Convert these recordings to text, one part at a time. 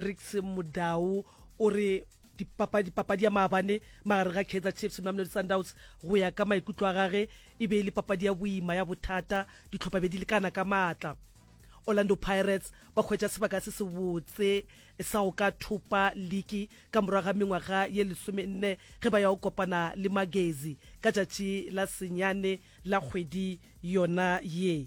Ricks Mudau o re dipapadi papadi ya maabane magare ga Kaizer Chiefs le Mamelodi Sundowns go ya ka maikutlo a gage e be e le papadi ya boima ya bothata ditlhopha be di lekana ka maatla Orlando Pirates ba hwetša sebaka se se botse sa go ka thopa liki ka morago ga mengwaga ye lesomenne ge ba ya go kopana le Magezi ka tšatši la senyane la kgwedi yona ye.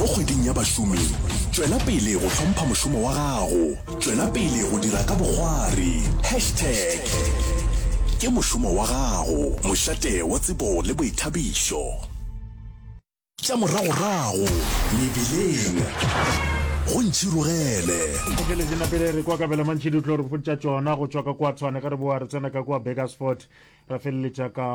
Mo kgweding ya bašomi, tšwela pele go hlompha mošomo wa gago. Tšwela pele go dira ka bokgwari. Hashtag Ke mošomo wa gago, mošate wa tsebo le boithabišo. Tša moragorago mebileng go ntšhirogele. Ntšhirogele di napele re kwa Kabelamantšhidi o tlo re botša tšona go tšwa ka kwa Tshwane ge re boa re tsena ka kwa Burgersfort. ra feleletša ka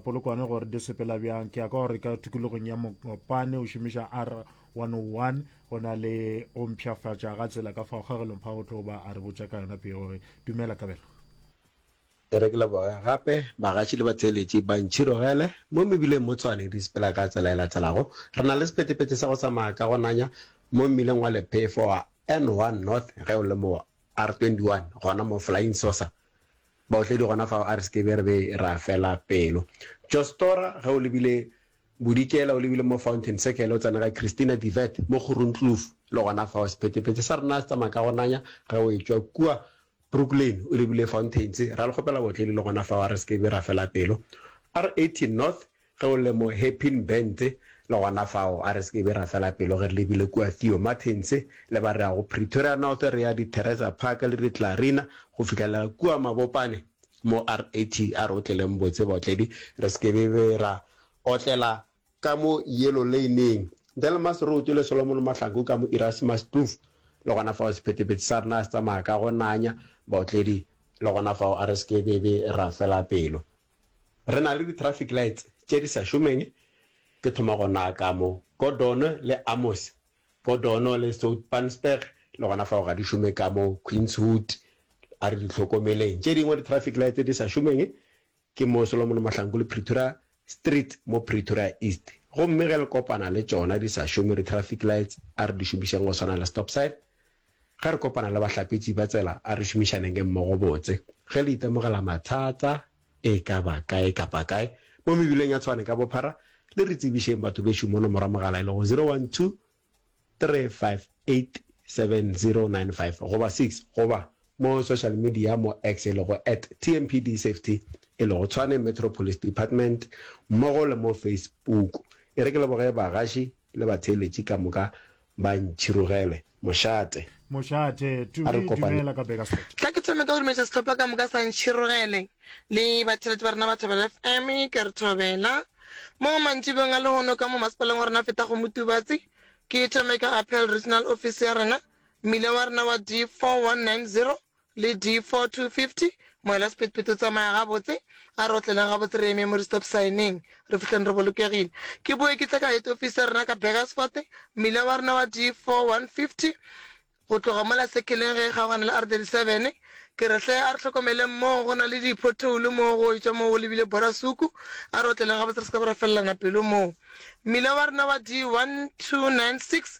polokwane gore di sepela bjang ke ya ka gore ka tukulogong ya mokopane o šomiša r 101 go na le o mpšhafatša ga tsela ka fa kgagelong pha go tlo ba a re botša ka yona peo gore dumela kabelo re ke leboge gape bagatši le batheeletši ba ntšhirogele mo mebileng mo tshwane di sepela ka tsela e latelago re na le sepetepete sa go tsamaya ka go nanya mo mmileng wa lephefo wa n1 north ge o le mo r21 gona mo flying saucer Baotledi gona fao a re se ke be re be ra fela pelo. Jostora, ge o lebile Bodikela, o lebile mo Fountain Circle, o tsena ga Christina de Wet mo Kgorongkloof, le gona fao sephetephete sa rena se tsamaya ka go nanya ge o etšwa kua Brooklyn o lebile Fountains. Ra le kgopela baotledi le gona fao a re se ke be ra fela pelo. R18 North, Ge o le mo Happin Band le gona fao, a re se ke be ra fela pelo ge re lebile kua Theo Martins le ba re ya go Pretoria North, re ya Ditereza Park le Ditllarina go fihlela kua Mabopane mo RAT a re otleleng botse baotledi. Re se ke be be ra otlela ka mo Yellow Lane-ing, Delmas Road le Solomon Mahlangu ka mo Erasmus Kloof. Le gona fao sephetephete sa rena se tsamaya ka go nanya baotledi le gona fao a re se ke be be ra fela pelo. Re na le di-traffic lights tše di sa šomeng, ke thoma go naka mo. Gordon le Amos, Gordon le Soutpansberg le gona fao ga di šome ka mo Queenswood, a re di hlokomeleng tše dingwe di-traffic lights tse di sa šomeng, ke mo Solomon Mahlangu le Pretoria Street mo Pretoria East. Gomme ge le kopana le tšona di sa šome di-traffic lights, a re di šomišeng go swana le stop sign, Ge re kopana le bahlapetši ba tsela, a re šomišanenge mmogo botse. Ge le itemogela mathata, e ka ba kae kapa kae, mo mebileng ya Tshwane ka bophara, le re tsebišeng batho bešo mono morwa mogala e lego 0123587095 goba 6 goba mo social media mo X e lego at TMPDSafety e lego Tshwane Metro Police Department mmogo le mo Facebook. E re ke leboge bagaši Le batheeletši ka moka ba ntšhirogele. Mošate. Mošate, A re Tumi, kopane. dumela ka Bakersford. Tla ke thome ka go dumeletša sehlopha ka moka sa ntšhirogele. Le batheeletši ba rena ba Thobela FM, ke a re thobela. Mo mantšibeng a lehono ka mo masepaleng wa rena a fetago Motubatse, ke thome ka Apel Regional Office ya rena, mmila wa rena wa D 4190, Le D4 250, moela sephethephethe o tsamaya gabotse, a re otleleng gabotse re eme mo re stop sign-eng, re fihleng re bolokegile. Ke boe ke tle ka head office ya rena ka Burgersfort, mmila wa rena wa D4 150, go tloga mola sekheleng ge e kgaogana le R37. Ke re, Hle, a re hlokomeleng moo, go na le diphothoulo moo go etšwa moo go lebile Borasuku, a re otleleng gabotse re se ka be ra felelana pelo moo. Mmila wa rena wa D1296,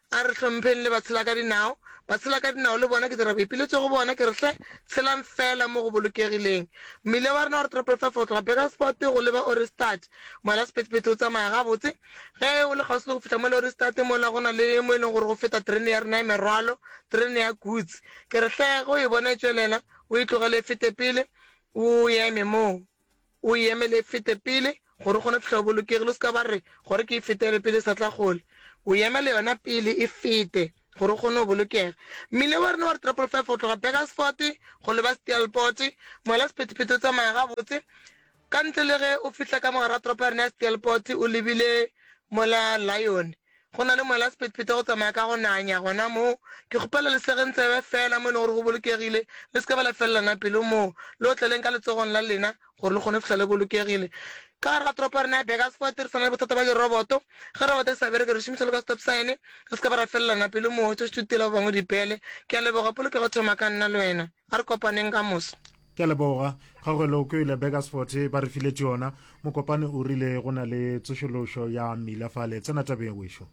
A re hlompheng le batshelakadinao. Batshelakadinao le bona ke dira boipiletšo go bona, ke re, Hle, tshelang feela mo go bolokegileng. Mmile wa rena o re tropeltsa fo tloga Burgerspoort go leba Ohrigstad. Moela sephethephethe o tsamaya gabotse. Ge o le kgauswi le go fihla mola Ohrigstad, mola go na le mo e leng gore go feta terene ya rena ya merwalo, terene ya goods. Ke re, Hle, ge o e bona e tšwelela, o e tlogele e fete pele, o eme moo. O e emele e fete pele, gore o kgone go fihla o bolokegile. O se ka ba re, Gore ke e fetele pele e sa tla kgole. O e emele yona pele e fete, gore o kgone go bolokega. Mmila wa rena wa Retrapolo Five go tloga Burgersfort go leba Steelpoort, moela sephethephethe o tsamaya gabotse, ka ntle le ge o fihla ka mogare ga toropo ya rena ya Steelpoort o lebile moela Lyone. Go na le mola sephethephethe go tsamaya ka go nanya gona moo. Ke kgopela le segeng tsebe feela mo e lego gore go bolokegile, le se ka ba la felelana pelo moo. Le otleleng ka letsogong la lena gore le kgone go fihla le bolokegile. Ka gare ga toropo ya rena ya Burgersfort re swana le bothata bja diroboto. Ge roboto e sa bereke re šomiša le ka stop sign. Re se ka ba ra felelana pelo moo, tšo šutela ba bangwe dipele. Ke a leboga, polokego e thoma ka nna le wena. A re kopaneng ka moso. Ke a leboga. Kgaugelo ke ile Begersfort ba re file tšona. Mokopane o rile go na le tsošološo ya mmila fale. Tsena tabeng wešo.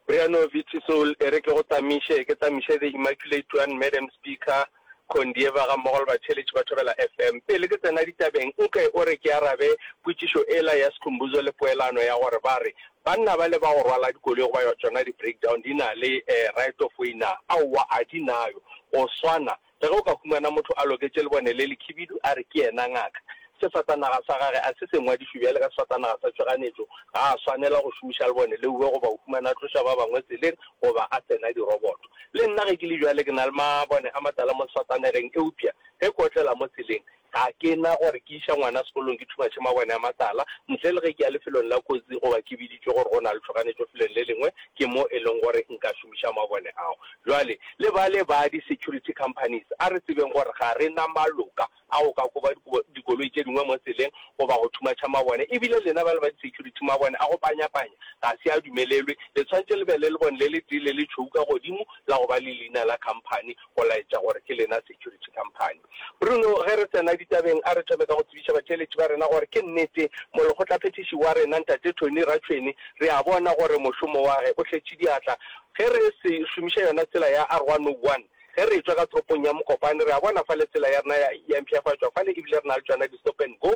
Briyano Vitisol e re ke go tamiše, ke tamiše The Immaculate One, Madam Speaker, Condieva ga mmogo le batheeletši ba Thobela FM. Pele ke tsena ditabeng, nke o re ke arabe potšišo ela ya Skhumbuzo le poelano ya gore ba re banna bale ba go rwala dikoloi goba tšona di-breakdown di na le right of way na? Aowa, ga di nayo. Go swana Le ge o ka humana motho a loketše lebone le lekhibidu, a re ke yena ngaka, sefatanaga sa gage a se se ngwadišwe bjale ka sefatanaga sa tšhoganetšo, ga a swanela go šomiša lebone leue goba o humana a tloša ba bangwe tseleng goba a tsena diroboto. Le nna ge ke le bjale ke na le mabone a matala mo sefatanegeng, eupša ge ke otlela mo tseleng, Ga ke na gore ke iša ngwana sekolong ke thumatše mabone a matala, ntle le ge ke ya lefelong la kotsi goba ke biditšwe gore go na le tšhoganetšo felong le lengwe, ke mo e leng gore nka šomiša mabone ao. Bjale, le bale ba di-security companies, a re tsebeng gore ga re na maloka a go ka koba dikoloi tše dingwe mo tseleng goba go thumatša mabone. Ebile lena bale ba di-security, mabone a go panyapanya ga se a dumelelwe. Le tshwanetše le be le lebone le letee le letšhweu ka godimo la go ba le leina la company go laetša gore ke lena security company. Bruno, ge re tsena ditabeng, a re thome ka go tsebiša batšweletši ba rena gore ke nnete molekgotlaphethiši wa rena, Ntate Tony Ratšhweni, re a bona gore mošomo wage o hletše diatla. Ge re se šomiša yona tsela ya R101, ge re tšwa ka toropong ya Mokopane, re a bona fale tsela ya rena ya ya mpšhafatšwa fale ebile re na le tšona di-stop and go.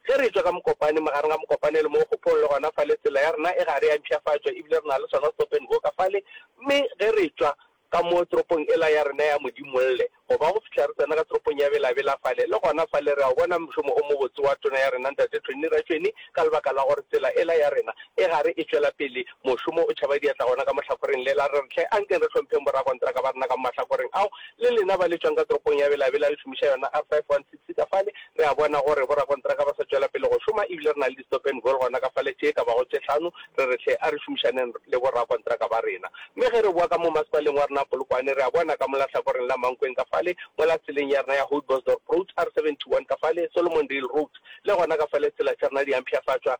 Ge re tšwa ka Mokopane, magareng ga Mokopane le mo Kgophong, le gona fale tsela ya rena e gare ya mpšhafatšwa ebile re na le sona stop and go ka fale. Mme ge re tšwa Ka mo toropong ela ya rena ya Modimolle, go ba go fihla re tsena ka toropong ya Bela-Bela fale, le gona fale re a o bona mošomo o mobotse wa Tona ya rena Ntate Tšhwenni Ratšhweni, ka lebaka la gore tsela ela ya rena e gare e tšwela pele, mošomo o tšhaba diatla gona ka mo hlakoreng lela. Re re, Hle, ankeng re hlompheng bo-rakonteraka ba rena ka mo mahlakoreng ao, le lena ba le tšwang ka toropong ya Bela-Bela le šomiša yona R516. Se ka fale, re a bona gore borakontraka ba sa tšwela pele go šoma e bile re na le di-stop-and-goal gona ka fale tše e ka bago tše hlano. Re re, Hle, a re šomišaneng le borakontraka ba rena. Mme ge re boa ka mo masepaleng wa rena Polokwane, re a bona ka mola hlakoreng la Mankweng ka fale, mola tseleng ya rena ya Houtbosdorp Road, R71 ka fale, Solomondale Road, le gona ka fale tsela tša rena di a mpshafatšwa.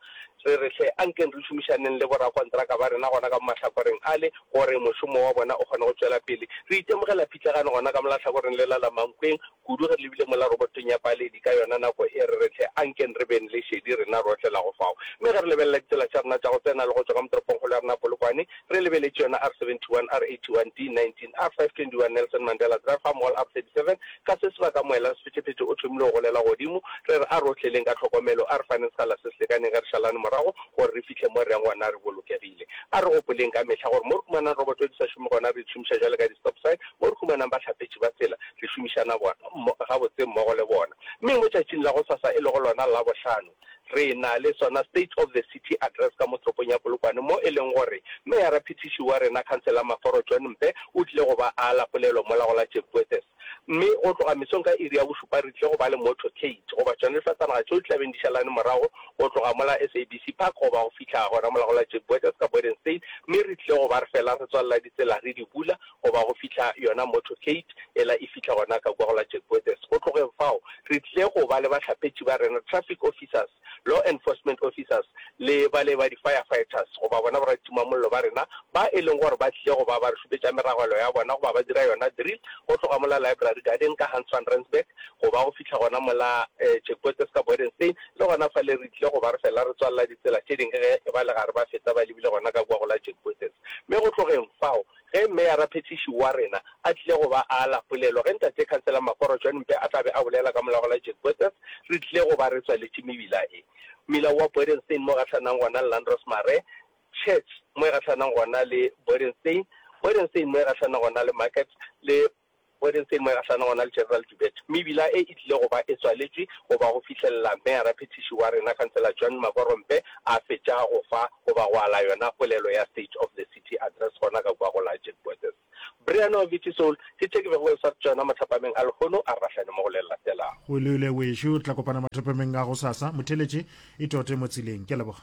Re re, Hle, a nkeng re šomišaneng le borakontraka ba rena gona ka mo mahlakoreng ale gore mošomo wa bona o kgone go tšwela pele. Re itemogela phitlagano gona ka mola hlakoreng lela la Mankweng. Kudu re lebile mola robotong ya Baaledi ka yona nako e re re hle, ankeng re beng le šedi rena rohle la go fao. Mme ge re lebelela ditsela tša rena tša go tsena le go tšwa ka mo toropongkgolo ya rena Polokwane, re lebeletše yona R71, R81, D19, R521, Nelson Mandela Drive gammogo le R37, ka se sebaka moela sephethephethe o thomile go golela godimo, re re a re o hleleng ka tlhokomelo, a re faneng sekgala se se lekaneng ge re šalane morago gore re fihle mo re yang gona re bolokegile. A re gopoleng ka mehla gore mo re humanang roboto di sa šome gona re di šomiša bjalo ka di-stop sign, mo re humanang bahlapetši ba tsela, re šomišana bona, gabotse mmogo le bona. Mme mo tšatšing la gosasa, e lego lona Labohlano, re na le sona State of the City Address ka mo toropong ya Polokwane, mo e leng gore Meyara-Phethiši wa rena, Khansele Maforo John Mpe, o tlile go ba ala polelo mola go la Chepkwethess. Mme go tloga mesong ka iri ya bošupa re tlile go ba le motorcade, goba tšona difatanaga tšeo di tla beng di šalane morago go tloga mola SABC Park goba go fihla gona mola go la Chepkwethess ka Borden State, mme re tlile go ba re fela re tswalela ditsela re di bula, goba go fihla yona motorcade ela e fihla gona ka kua go la Jack Bothes. Go tlogeng fao, re tlile go ba le bahlapetši ba rena, traffic officers, law enforcement officers le bale ba di-firefighters goba bona boratimamollo ba rena ba e leng gore ba tlile go ba ba re šupetša meragelo ya bona goba ba dira yona drill go tloga mola Library Garden ka Hans van Rensburg goba go fihla gona mola Jack Bothes ka Bodenstein. Le gona fale re tlile go ba re fela re tswalela ditsela tše dingwe ge e ba le gare ba feta ba lebile gona ka kua go la Jack Bothes. Mme go tlogeng fao, Ge Meyara Phethiši wa rena a tlile go ba a ala polelo, ge Ntate Khansela Makgoro John Mpe a tla be a bolela ka molago la Jack Botha's, re tlile go ba re tswaletše mebila e. Mmila wa Bodenstein mo e gahlanang gona le Landros Mare, Church mo e gahlanang gona le Bodenstein, Bodenstein mo e gahlanang gona le Market, le. Wednesday moegahlano go na le General Dubete mme bila e e tlile go ba e tswaletšwe go ba go fihlelela Meyara Phethiši wa rena Khansela John Makorompe a fetša go fa goba go ala yona polelo ya State of the City Address gona ka kua go la Jack Bothes. Brian wa Viti Soul ke tše ke bego ke sa tšona mothapameng a lehono a re rahlane mo go le latelago. O lule wešo, tla kopana mathapameng a gosasa. Motheletše, Itote mo tseleng. Ke a leboga.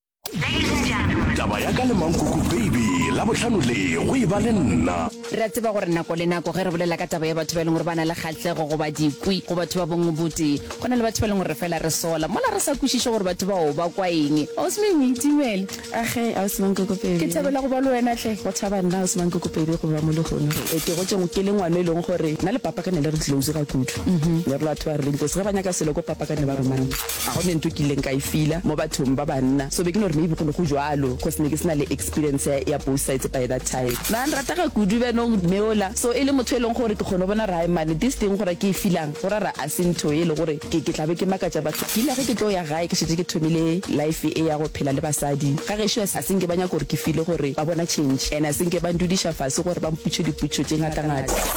taba ya ka le mankoko baby la bohlano le go e ba le nna re a tseba gore nako le nako ge re bolela ka taba ya batho ba e leng gore ba na le kgatlego goba dikwi go batho ba bongwe botee go na le batho ba e leng gore fela re sola mola re sa kwešiše gore batho bao ba kwa eng ausme o itimele age ausmankokopebe ke thabela go ba le wena tle go thaba nna ausmankokopebe go ba mo legono e ke go tšeng ke le ngwana e leng gore nna le papa ka ne le re tlileuzi ga kudu ne re batho ba re le ntlo se ge ba nyaka selo ko papa ka ne ba romana Ga go ne nto ke ileng ka e feeler mo bathong ba banna, so be ke no re maybe go ne go jwalo cos ne ke se na le experience ya both sides by that time. Ba nratega kudu ba no neola, so e le motho e leng gore ke kgona go bona gore hai man this thing go ra ke e feelang go ra ra a se ntho e le gore ke ke tla be ke makatša batho. Ke ile ge ke tlo ya gae ke šetše ke thomile life e ya go phela le basadi ga gešo, a se nke ba nyaka gore ke feele gore ba bona change and a se nke ba ndudiša fase gore ba mputše diputšo tše ngata ngata.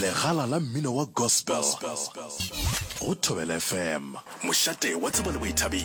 legala la mmino wa gospel go thobela fm mošate wa tsebo le boithabi